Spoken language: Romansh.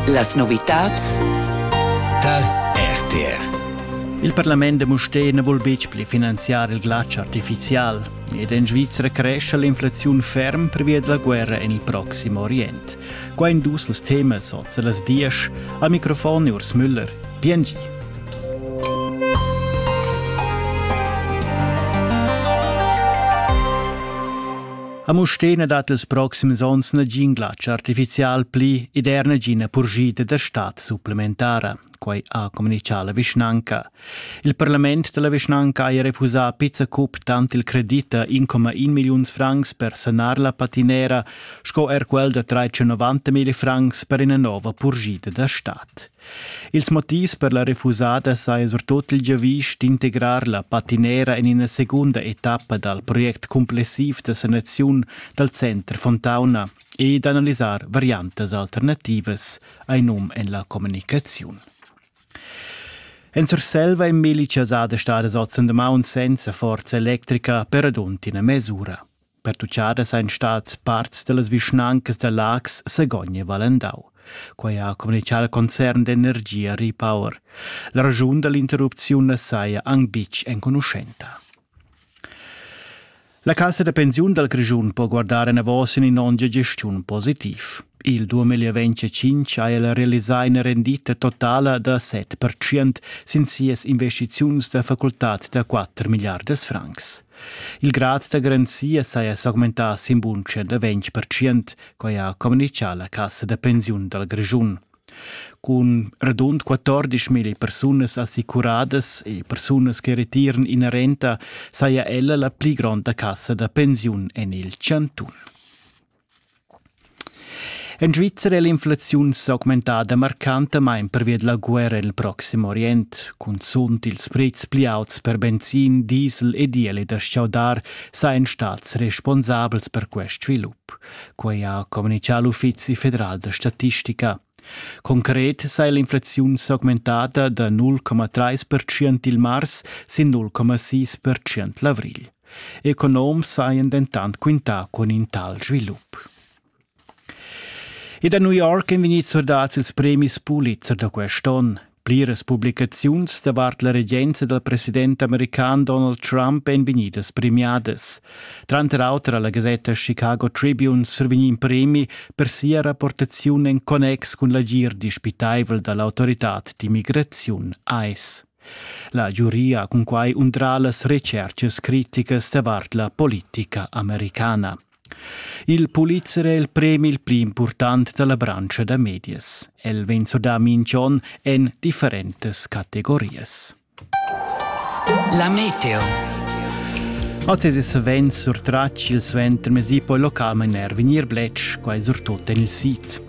Las novitads tar RTR. Il parlament da Mustér na vul betg pli finanziar il glatsch artifizial ed en Svizra crescha l'inflaziun ferm pervia da la guerra en il proxim Orient. Qua in dus els temas oz las diesch. Al microfon Urs Müller. Biengi. A Mustena dat els proxims onns nagin glatsch artificial pli ed er nagina purschida da stat supplementara, quai ha communitgà la vischnanca. Il parlament da la vischnanca ha refusà a pizza cup tant il credit da 1,1 milliuns francs per sanar la patinera sco er quel da 390 mila francs per ina nova purschida da stat. Ils motivs per la refusada saja surtut il giavisch d'integrar la patinera en ina segunda etappa dal project cumplessiv da sanaziun dal center Fontauna e d'analisar variantas alternativas, hai num en la communicaziun. En Surselva è Meli Chazada stadas oz en damaun senza forza electrica per radund ina mes'ura. Pertuchadas ein stats parts dallas vischnancas da Laax, Sagogn e Valendau. Quei ha communicau al concern d'energia Repower. La raschun dall'interrupziun na saja anc buc enconuschenta. La cassa da pensiun dal Grischun po guardar enavos in ondia gestiun positiv. Il 2025 ha el realisà ina rendita totala da 7% sin sias investiziuns da facultad da 4 milliardas francs. Il grad da garanzia saja s'augmentà sin bunscha da 20 percent, quai ha communitgà la cassa da pensiun dal Grischun. Cun radund 14 mila persunas assicuradas e persunas che retiran ina renta saja ella la pli gronda cassa da pensiun en il chantun. En Svizra è l'inflaziun s'augmentada marcantamain pervia da la guerra en il Proxim Orient. Cunzunt ils prezs pli auts per benzin, diesel e diesel e da chaudar sajan stads responsabels per quest svilup. Quai ha communitgà l'Uffizi federal da statistica. Concret sa è l'inflaziun s'augmentada da 0,3 percent il mars sin 0,6 percent l'avrigl. Economs hajan dentant quintà cun in tal svilup. E da New York èn vegnids sordads ils premis Pulitzer da quest onn. Pliras publicaziuns davart la regenza dal president american Donald Trump èn vegnidas premiadas. Tranter auter ha la gasetta Chicago Tribune survegnì in premi per sia rapportaziun en connex cun l'agir dispitaivel da l'autoritad d'immigraziun ICE. La giuria ha cunquai undrà las retschertgas criticas davart la politica americana. Il Pulitzer è il premi il pli impurtant da la branscha da medias. El vegn surdà mintg'onn en differentas categorias. La meteo. Oz è savens surtratg il suentermesi, poi localmain er vegnir bletsch, quai surtut en il sid.